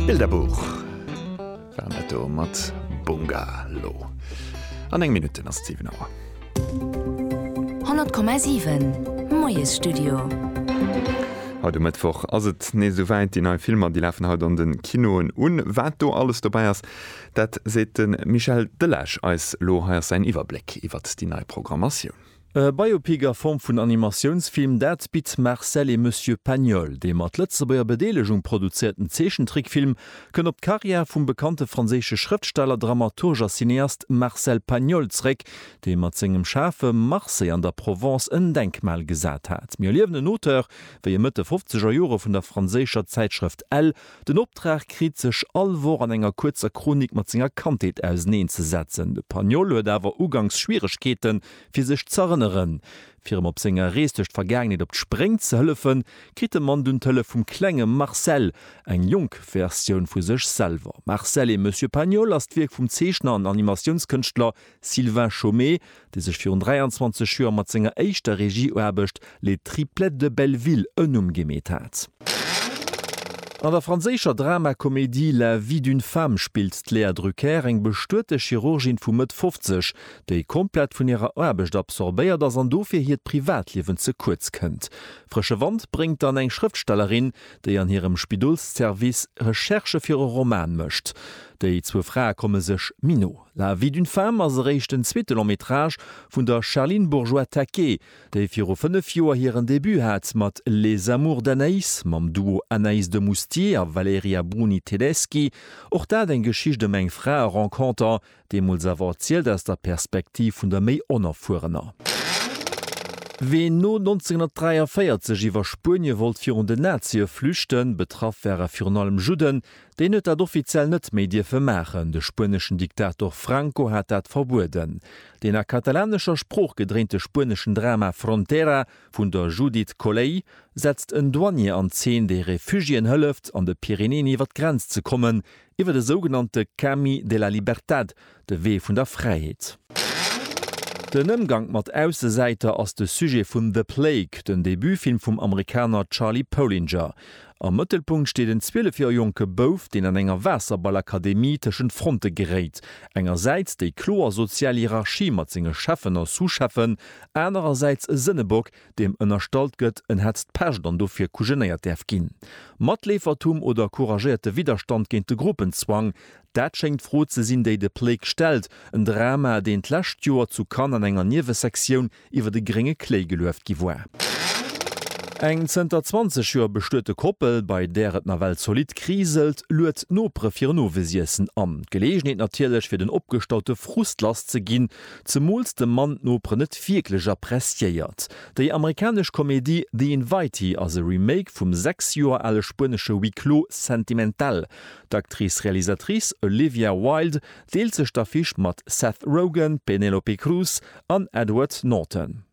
Bilderbuch war dat do mat Bungalow. An eng Minutten ass 7 Auer. 100,7 Moiesstudio. Haut um Mëttwoch ass et nees esou wäit, déi nei Filmer, déi lafen haut an de Kinoen un. Wat do alles dobäi ass, dat seet de Michel Delage eis elo. Hei ass säin Iwwerbléck iwwert déi nei Programmatioun. E Biopic a Form vun Animatiounsfilm, dat bitt Marcel et Monsieur Pagnol. Dee mat Lëtzebuerger Bedeelegung produzéierten Zeechentrickfilm kënnt op d'Karriär vum bekannte franséische Schrëftsteller, Dramaturg a Cineast Marcel Pagnol zeréck, dee mat sengem Schafe Marseille an der Provence en Denkmal gesat hat. Mir erliewen en Auteur, wéi e Mëtt de fofzeger Jore vun der franséischer Zäitschrëft Elle den Optrag kritt, sech all Woch an enger kuerzer Chronik mat senger Kandheet auseneen ze setzen. De Pagnol huet awer uganks Schwieregkeeten, Fir sech z'erënneren. Fir em op senger Rees duerch d'Vergaangenheet op d'Spréng ze hëllefen, kritt de Mann dunn d'Hëllef vum klenge Marcel, eng jonk Versioun vu sech selwer. Marcel et Monsieur Pagnol ass d'Wierk vum Zeechner an Animatiounskënschtler Sylvain Chomet, dee sech virun 23 Joer mat senger éischter Regieaarbecht Les Triplettes de Belleville en Numm gemeet hat. An der franséischer Dramakomedie La vie d'une femme spillt d'Léa Drucker eng bestuete Chirurgin vu Mëtt 50, déi komplett vun hirer Aarbecht absorbéiert ass an dofir hiert Privatliewen ze kuerz kënnt. Frësche Wand bréngt dann eng Schrëftstellerin, déi an hirem Spidolsservice Recherchë fir e Roman mécht. Déi zwou Frae komme sech méi no. La vie d'une femme ass eréischt den zweete Long-métrage vun der Charline Bourgeois-Taquet, déi viru fënnef Joer hiren Debut hat mat Les amours d'Anaïs mam Duo Anaïs de Moustier a Valerija Bruni Tedeschi. Och dat eng Geschicht ëm eng Fraerenconter, deemools awer erzielt aus der Perspektiv vun der méi Onerfuerener. Ween no 1943 iwwer Spuenie wollt virun den Nazie flüchten, betraff ware virun allem Judden, deen huet dat offiziell net méi dierfe maachen, de spueneschen Diktator Franco hat dat verbueden. Den a katalanescher Sprooch gedréinte spueneschen Drama Frontera vun der Judith Colley setzt en Douanier an Zeen, dee Refugiéen hëlleft, an de Pyrenäen iwwer d'Grenz ze kommen, iwwer de sougenannte Cami de la Libertad, de Wee vun der Fräiheet. Den Ëmgank mat Aussesäiter ass de Sujet vun The Plague, den Debutfilm vum Amerikaner Charlie Polinger. Am Mëttelpunkt steet en 12 Joer jonke Bouf, deen an enger Waasserballakademie tëschent Fronte geréit, engersäits déi kloer sozial Hierarchie mat senge Cheffen a Sous-Cheffen, anerersäits e Sënnebock, deem ënnerstallt gëtt, en hätt d'Pescht an dofir kujenéiert däerf ginn. Matleefertum oder couragéierte Widderstand géint de Gruppenzwang? Dat schéngt d'Fro ze sinn, déi de Plake stellt. En Drama, deen d'lescht Joer zu Cannes an enger Niewesektioun iwwer de grénge Kléi gelueft gi war. Eng zënter 20 Joer bestuete Koppel, bei där et nawell zolidd kriselt, luet d'Nopere fir en Owesiessen an. Geleegenheet natierlech, fir den opgestaute Frust lass ze ginn, zemools de Mann d'Noperen net wierklech appreciéiert. Déi amerikanesch Komedie The Invitee ass e Remake vum sechs Joer ale spuenesche Huis clos sentimental. D'Actrice-Realisatrice Olivia Wilde deelt sech d'Affiche mat Seth Rogen, Penelope Cruz an Edward Norton.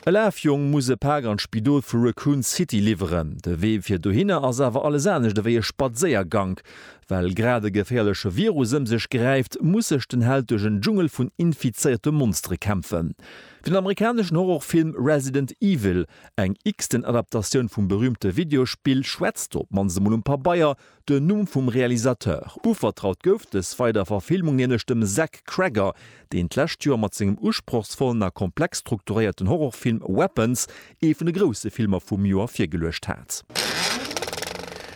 E Lafjong muss e Pak an d'Spidol vu Raccoon City liwweren. De Wee fir dohinner ass awer alles anescht ewéi e Spadséiergank. Well grad e geféierleche Virus ëm sech gräift, muss sech den Held duerch en Dschungel vun infizéierte Monstere kämpfen. Fir den amerikaneschen Horrorfilm Resident Evil, eng x-ten Adaptatioun vum berüümte Videospill, schwätzt op mannst emol um Pabeier Den Numm vum Realisateur. Uvertraut gouf dës weider Verfilmung nämlech dem Zach Cregger, deen d'lescht Joer mat sengem usprochsvollen a komplex strukturéierten Horrorfilm Weapons ee vun de grousse Filmer vum Joer virgeluecht hat.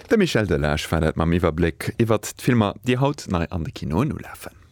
De Michel Delage war dat mam Iwwerbléck iwwert d'Filmer, déi haut nei an de Kinoen ulafen.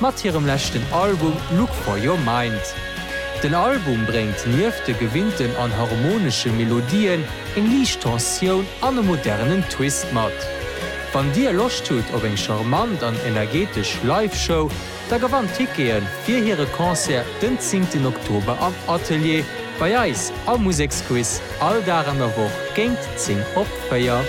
mat hirem leschten Album Look For Your Mind. Den Album bréngt nieft de gewinnten an harmonesche Melodien eng liicht Tensioun an e modernen Twist mat. Wann dir Loscht hutt op eng charmant an energetesch Live-Show, da gewannt Tickete fir hire Concert den zéngten Oktober am Atelier bei eis am Museksquiz all Dag an der Woch géint 10 op 4.